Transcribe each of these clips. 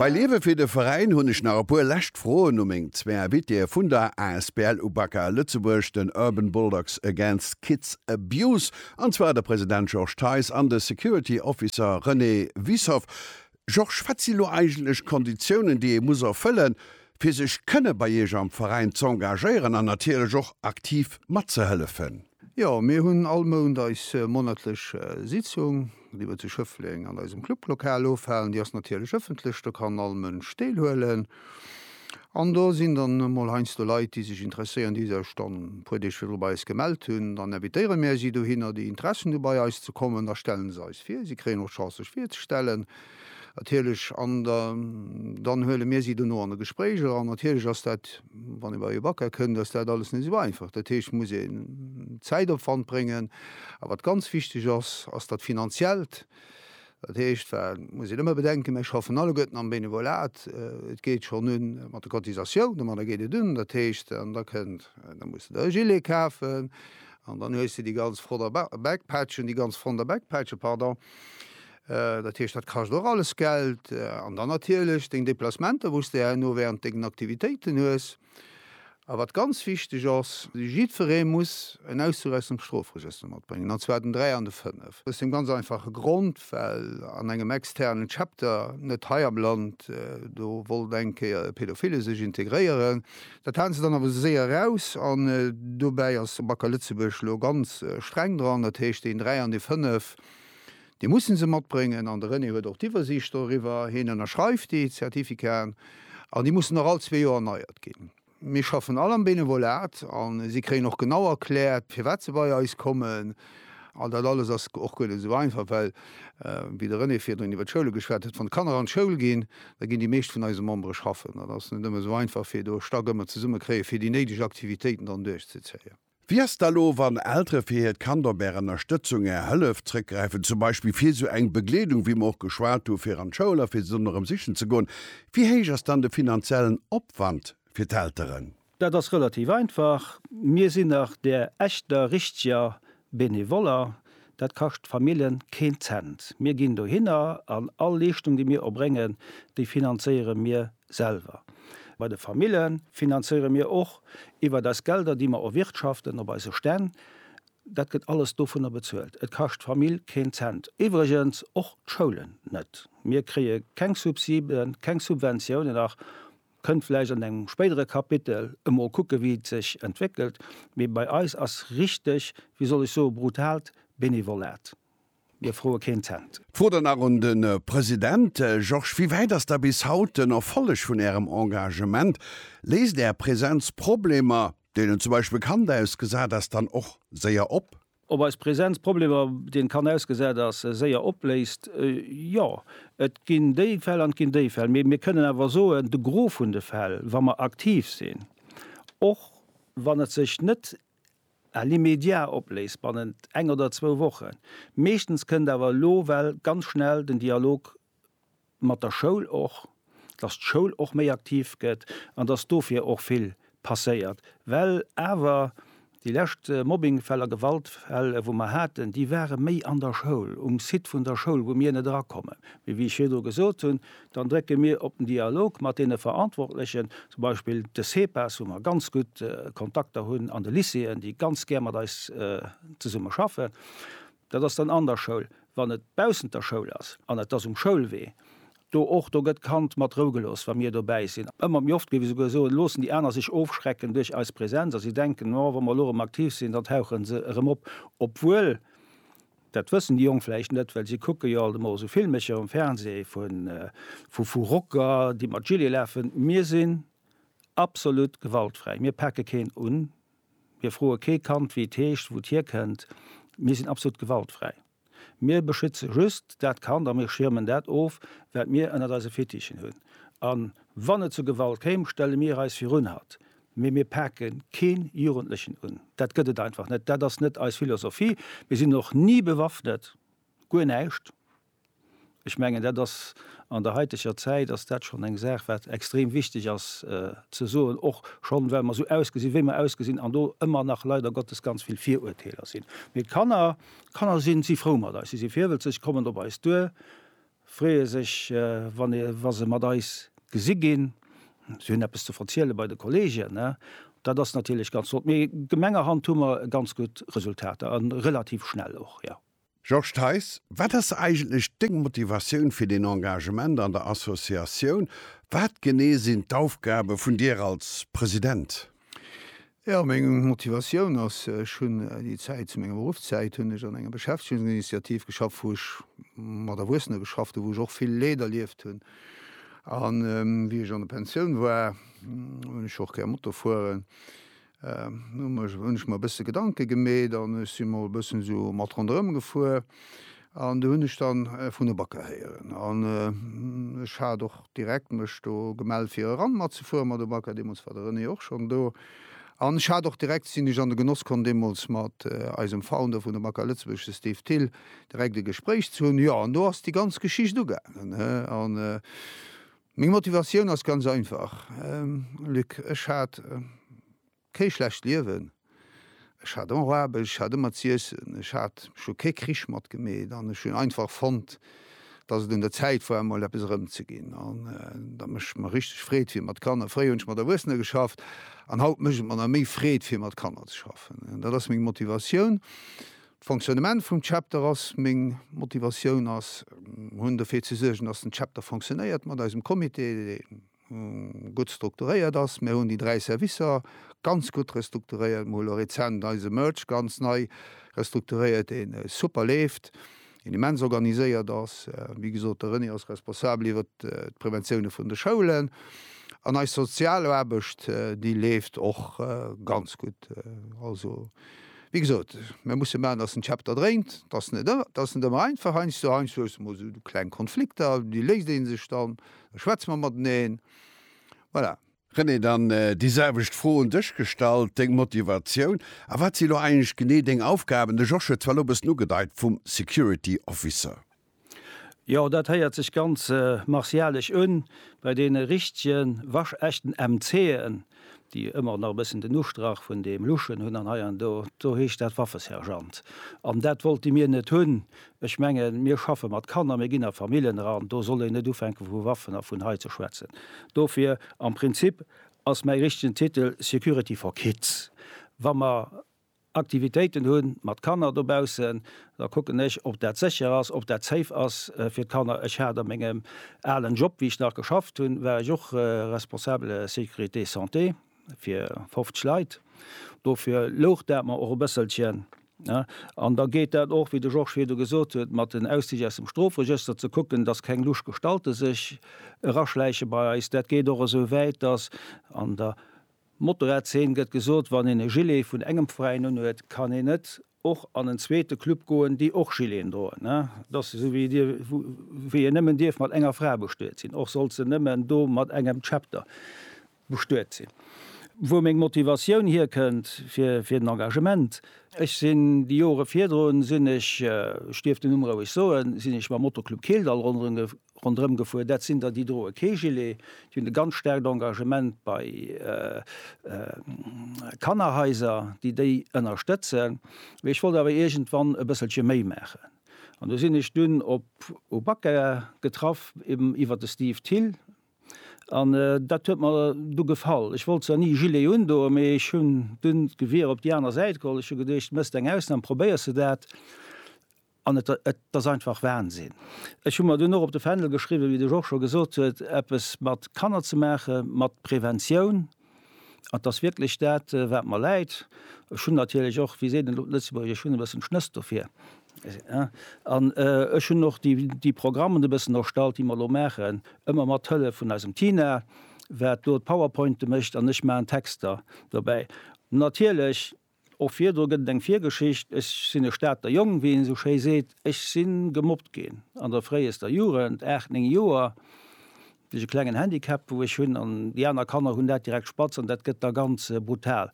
Bei Liewe fir de Veräin hunn ech nach e puer lescht Froen u meng zwee Invitéë vun der asbl UBAKA Lëtzebuerg, den Urban Bulldogs Against Kids Abuse, an zwar de President Georges Theis an de Security Officer René Wiessoff. Georges, wat si lo eigentlech d'Konditiounen, déi ee muss erfëllen, fir sech kënne bei Iech am Veräin z'engagéieren an natierlech och aktiv matzehëllefen? Jo, mir hunn all Mount eis monatlech Sitzung, déi mer zu Schëffleng an eisem Clublokal ofhalen. Déi ass natierlech ëffentlech, do kann all Mënsch deelhuelen. An do sinn dann emol heiansdo Leit, déi sech interesséieren, déi sech dann e puer Deeg virdru bei eis gemellt hunn. Dann invitéiere mir si dohinner, déi Interessen hu bei eis ze kommen. Da stelle se eis vir, si kréien och d'Chance sech virzestellen. Natierlech, an dann huele mir si dono an e Gespréich eran. Natierlech ass dat, wann ee bei ee Bäcker kënnt, ass dat alles net esou einfach. Dat heescht, et muss een Zäitopwand bréngen. A wat ganz wichteg ass, ass dat Finanziellt. Dat heescht, wat muss een ëmmer bedenken, Mir schaffen alleguerten am Benevolat. Et geet schonn u mat de Cotisatiounen, ma da geet et un, dat heescht, an da kënnt, da muss de der e Gilet kafen an dann hues de déi ganz Frotter Backpatchen, déi ganz Fronter Backpatchen, pardon. Dat heescht, dat kascht och alles Geld. An dann natierlech deng Deplacementer, wou s de herno während dengen Aktivitéiten hues. A wat ganz wichteg ass, Jiddweree muss en Auszuch aus dem Strofregëster matbréngen, an zwar den 3 an de 5. Aus deem ganz einfache Grond, well an engem externen Chapter, net hei am Land, do wollt eng Kéier e Pädophile sech integréieren. Dat haten se dann awer esou séier eraus. An dobäi ass de Bac à Lëtzebuerg elo ganz streng dran. Dat heescht, deen 3 an dee 5, Déi mussen se matbréngen an de René huet och d'Iwwersiicht doriwwer. Hien ënnerschreift déi Zertifikaten an déi mussen och all zwee Joer erneiert ginn. Mir schaffen all am Benevolat a si kréien och genau erkläert, firwat se bei eis kommen. An dat alles ass och guer net esou einfach, well, wéi de René virdrun iwwer d'Schoule geschwat huet, wann d'Kanner an d'Schoul ginn, da ginn déi meescht vun eise Membere schaffen. Dat ass net ëmmer esou einfach, fir do Stack ëmmer zesummekréien, fir déi néideg Aktivitéiten dann duerchzezéien. Wéi ass da lo wann Eltere fir hiert Kand op Är Ënnerstëtzung, Är Hëllef zréckgräifen, zum Beispill fir sou eng Begleedung wéi mer och geschwat hu fir an d'Schoul a fir se dann erëm sichen ze goen. Wéi héich ass dann de finanziellen Opwand fir d'Elteren? Dat ass relativ einfach, mir sinn nach där echter richteger Benevoller, Dat kascht d'Famillen keen Cent. Mir ginn dohinner an all Leeschtung, déi mir erbréngen, déi finanzéiere mir selwer. Bei de Famille finanzéiere mir och iwwert eis Gelder, déi mer erwirtschaften op eise Stänn. Dat gëtt alles dovunner bezuelt. Et kascht d'Famill keen Cent. Iwwregens och d'Schoulen net. Mir kréie keng Subsiden, keng Subventiounen nach Kënnt vläicht an engem spéidere Kapitel, emol kucke wéi et sech entwéckelt. Mee bei eis ass richteg, wéi soll ech soe brutaalt Benevolat. Mir froe keen Cent. D'Fro dann nach un de President. Georges, wéi wäit ass da bis haut den Erfolleg vun Ärem Engagement? Léist Är Presenz Problemer, deenen zum Beispill Kand ausgesat ass, dann och séier op? Ob eis Präsenz Problemer, déi en kann ausgesat ass, séier opléist? Jo, et ginn déi Fäll an et ginn déi Fäll. Mee mir kënnen awer soen, de Gros vun de Fäll, wa mer aktiv sinn, och wann et sech net à l'immédiat opléist, bannent eng oder zwou Wochen, meeschtens kënnt awer elo well ganz schnell den Dialog mat der Schoul och, dass d'Schoul och méi aktiv gëtt an dass dofir och vill passéiert. Well awer déi lescht Mobbingfäll a Gewaltfäll, wou mer haten, déi ware méi an der Schoul, um Site vun der Schoul, wou mir net erakommen. Mee wéi ech virdru gesot hunn, dann drécke mir op den Dialog mat deene Verantwortlechen, zum Beispill de CEPAS, wou mer ganz gutt Kontakter hunn, an de Lycéeën, déi ganz gär mat eis zesumme schaffen. Dat ass dann an der Schoul. Wann et baussent der Schoul ass an et ass um Schoulwee, do och, do gëtt d'Kand mat Rou gelooss, wa mir dobäi sinn. Ëmmer méi oft, géif ech esouguer soen, loossen déi aner sech ofschrecken duerch eis Präsenz a si denken, oh, wa mer elo erëm aktiv sinn, dann tauche se erëm op. Obwuel, dat wëssen déi Jonk vläicht net, well si kucke jo alt emol esou Filmecher um Fernseh vu Rocker, déi mat Gilet lafen. Mir sinn absolut gewaltfräi, mir pake keen un. Mir froe kee Kand, wéi et heescht, wou et hierkënnt. Mir sinn absolut gewaltfräi. Mir beschütze just dat Kand a mir schiermen dat of, wat mir ënnert eise Fittichen hunn. A wann et zu Gewalt kéim, stelle mir eis virun hatt. Mee mir pake kee Jugendlechen un. Dat gëtt et einfach net. Dat ass net eis Philosophie. Mir sinn och ni bewaffnet. Guer näischt. Ech mengen, dat ass an der haiteger Zäit ass dat schonn eng Saach, wat extrem wichteg ass ze soen, och schonn, well mer esou ausgesinn, wéi mer ausgesinn an do ëmmer nach leider Gottes ganz vill Viruerteeler sinn. Mee d'Kanner, d'Kanner si si frou mat eis, si si virwëtzeg, kommen op eis duer, freeë sech, wann ee wa se mat eis gesi ginn, si hunn eppes ze verziele bei de Kolleegen. Dat ass natierlech ganz flott. Mee gemengerhand hu mer ganz gutt Resultater a relativ schnell och, jo. Georges Theis, Wat ass eigentlech deng Motivatioun fir den Engagement an der Associatioun? Wat genee sinn d'Aufgabe vun dir als President? Jo, meng Motivatioun ass, ech hunn déi Zäit, zu menger Beruffszäit hunn ech an enger Beschäftegungsinitiativ geschafft, wou ech mat Erwuessene geschafft hunn, wou ech och vill Leed erlieft hunn. A wéi ech an der Pensioun war, hunn ech och gär Moto fueren. Hunn ech mer e bësse Gedanke gemeet an ech si mol e bëssen esou mat ronderëm gefuer an do hunn ech dann vun e Bakker héieren an ech hat och direkt mech do gemellt fir eran matzefueren mat e Bakker. Deemools war de René och schonn do an ech hat och direkt sinn ech an de Genoss komm deemools mat eisem Founder vun de Bakker Lëtzebuerg, de Steve Thill, direkt e Gespréich ze hunn. Jo an do ass déi ganz Geschicht ugaangen an Meng Motivatioun ass ganz einfach, Luc, ech hat kee schlecht Liewen, ech hat ëmmer Aarbecht, ech hat ëmmer z'iessen, ech hat scho kee Krich matgemeet an ech hunn einfach fonnt, datt et un der Zäit war emol eppes erëmzeginn an datt mécht mer richteg Freed fir mat Kanner. Fréier hunn ech mat Erwuessener geschafft an haut mécht et mer nach méi Freed fir mat Kanner ze schaffen. Dat ass meng Motivatioun. D'Fonctionnement vum Chapter ass meng Motivatioun ass hunn dofir ze suergen, dass den Chapter fonctionnéiert mat eisem Comité, deen gutt strukturéiert ass. Mir hunn déi dräi Servicer ganz gutt restrukturéiert. Mir hu lo rezent eise Merch ganz nei restrukturéiert, deen super leeft, deen immens organiséiert ass. Wéi gesot, de René ass responsabel iwwer d'Präventioune vun de Schoulen. An eis Sozialaarbecht, déi leeft och ganz gutt. Also Wéi gesot, mir musse maachen, dass den Chapter dréint. Dat ass net, dat ass net ëmmer einfach. Heiansdo, heiansdo hues du emol esou kleng Konflikter, déi léist ee sech dann, da schwätze mer mateneen. Voilà. René, dann déi selwecht Fro un dech gestallt, deng Motivatioun a wat si elo eigentlech genee deng Aufgaben? De Josh huet zwar elo e bëssen ugedeit, vum Security Officer. Jo, dat héiert sech ganz martialesch un, bei deene richtege waschechten MC'en, déi ëmmer nach e bëssen den Ustrach vun deem luschen hunn, an hei an do, do heescht dat Waffesergeant. An dat wollte mir net hunn. Ech mengen, mir schaffe mat Kanner, mir ginn a Famillen eran, do soll een net ufänke vu Waffen a vun hei ze schwätzen. Dofir, am Prinzip ass mäi richtegen Titel Security for kids. Wa mer Aktivitéiten hunn mat Kanner dobaussen, da kucken ech ob dat sécher ass, ob dat safe ass fir d'Kanner. Ech hat a mengem alen Job, wéi ech nach geschafft hunn, war ech och Responsable Sécurité Santé fir 50 Leit. Dofir louch dat mer och e bësselchen. An da geet dat och, wéi de Georges virdu gesot huet, mat den Auszich aus dem Strofregëster ze kucken, dass keng lusch Gestalte sech eraschläiche bei eis. Dat geet och esou wäit, dass an der Motorradzeen gëtt gesot, wann een e Gilet vun engem Veräin unhuet, kann een net och an en zweete Club goen, déi och Gileten droen. Et ass esou wéi dir, wéi een nëmmen dierf mat enger Fra bestuet sinn, och sollt se nëmmen do mat engem Chapter bestuet sinn. Wou meng Motivatioun hierkënnt fir den Engagement, Ech sinn déi Jore virdrun sinn ech, ech dierf den Numm roueg soen, sinn ech mam Moto-Club Keeldall ronderëm Rondrëm gefuer. Dat sinn der, déi droe kee Gilet. Déi hunn e ganz staarkt Engagement bei Kannerhaiser, déi déi ënnerstëtzen. Mee ech wollt awer iergendwann e bësselche méi maachen. An do sinn ech dunn op u Bakker getraff, eben iwwer de Steve Thill. An dat huet mer du gefall. Ech wollt zwar ni Gilet undoen, mee ech hunn dunn d'Gewier op déi aner Säit geholl. Ech hu geduecht, méchs eng Ausnam, probéiers de dat. An et ass einfach Wahnsinn. Ech hu mer dunn och op de Fändel geschriwwen, wéi de Georges scho gesot huet, eppes mat Kanner ze maachen, mat Preventioun. An 't ass wierklech dat, wat mer läit. Ech hunn natierlech och, wéi seet een elo Lëtzebuergesch, ech hunn e bëssen Schnëss dofir. An ech hunn och déi Programmen e bëssen erstallt, déi mer elo maachen, ëmmer mat Hëllef vun eisem Tina, wat do d'Powerpointe mécht an ech maachen d'Texter dobäi. Natierlech Och virdru gëtt et eng Virgeschicht, Ech sinn e Stater Jong, wéi een esou schéi seet. Ech si gemobbt ginn an der fréiester Jugend, aacht, néng Joer. Duerch e klengen Handicap, wou ech hunn, an déi aner Kanner hunn dat direkt spatz an dat gëtt da ganz brutal.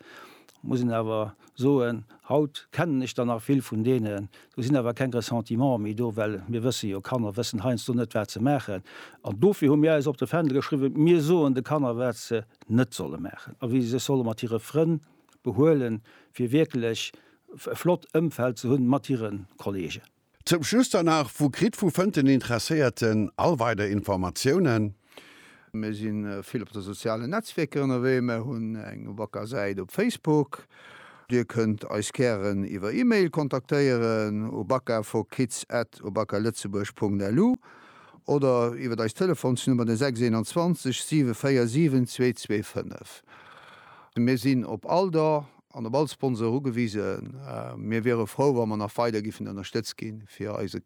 Muss een awer soen, haut kennen ech der nach vill vun deenen. Do sinn awer keng Ressentiments méi do, well mir wësse jo, Kanner wëssen heiansdo net, wat se maachen. An dofir hu mir eis op de Fändel geschriwwen, Mir soen de Kanner, wat se net solle maachen a wéi se sech solle mat hire Frënn behuelen, fir wierklech e flott Ëmfeld ze hunn mat hire Kollegen. Zum Schluss dann nach, Wou kritt, wou fënnt den Interesséierten all weider Informatiounen? Mir si vill op de sozialen Netzwierker ënnerwee. Mir hunn eng Wacker Säit op Facebook. Dir kënnt eis gären iwwer E-Mail kontaktéieren u baka for kids at obakalëtzebuerg Punkt lu oder iwwer eis Telefonsnummer, den 621 747 225. Mir sinn op all Don an op all Sponsor ugewisen. Mir wiere frou, wa mer nach weider giffen ënnerstëtzt gi fir eise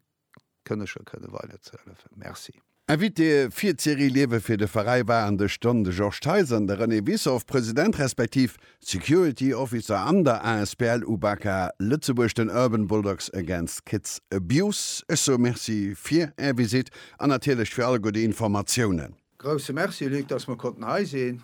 Kënneger kënne weider ze hëllefen. Merci. Invité fir d'Serie Liewe fir de Veräi war an de Stonn de Georges Theis an de René Wissoff, President respektiv Security Officer an der asbl UBAKA Lëtzebuerg, den Urban Bulldogs Against Kids Abuse. Ech soe Merci fir Är Visitt an natierlech fir all gudde Informatiounen. Grousse Merci Luc, dass mer konnten hei sinn.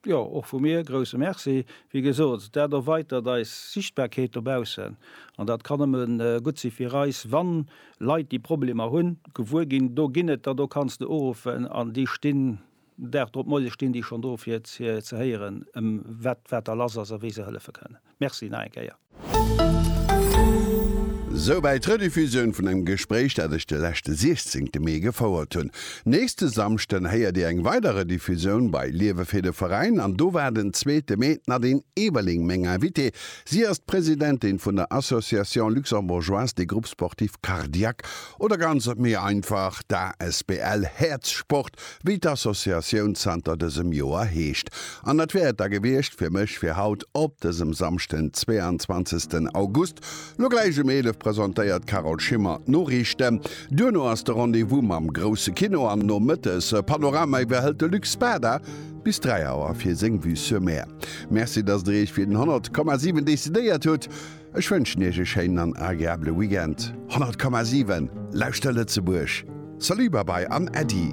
Jo, och vu mir grousse Merci. Wéi gesot, dat erweitert eis Sichtbarkeet dobaussen an dat kann nëmme gutt si fir eis, wann Leit déi Problemer hunn, gewuer ginn, do ginn et der, do kanns de uruffen an déi stinn Dag drop, Moie stinn déi schonn do fir ze héieren, ëm wat wat da lass ass a wéi se hëllefe kënnen. Merci nach eng Kéier. Souwäit d'Rediffusioun vun engem Gespréich, dat ech de leschte 16 te Mee gefouert hunn. Nächste Samschden héiert Dir eng weider Rediffusioun bei Liewe fir de Veräin an do war den zweete Mee d'Nadine Eberling meng Invitée. Si ass d'Presidentin vun der Association Luxembourgeoise des Groupes Sportifs Cardiaques oder ganz méi einfach d'ASBL Häerzsport, wéi d'Associatioun zanter dësem Joer heescht. An dat wär et da gewiescht fir mech fir haut op dësem Samschden, den 22 August. Lo gläich um 11 presentéiert d'Carole Schimmer d'Noriichten. Duerno ass de Rendez-vous mam grousse Kino an nomëttes e Panorama iwwerhëlt de Luc Spada bis 3 Auer fir seng Vue sur Mer. Merci, datt der iech fir den 100,7 decidéiert hutt. Ech wënschen iech e schéinen an agreabele Weekend. 100,7 lauschter Lëtzebuerg! Salut, Babai an Äddi!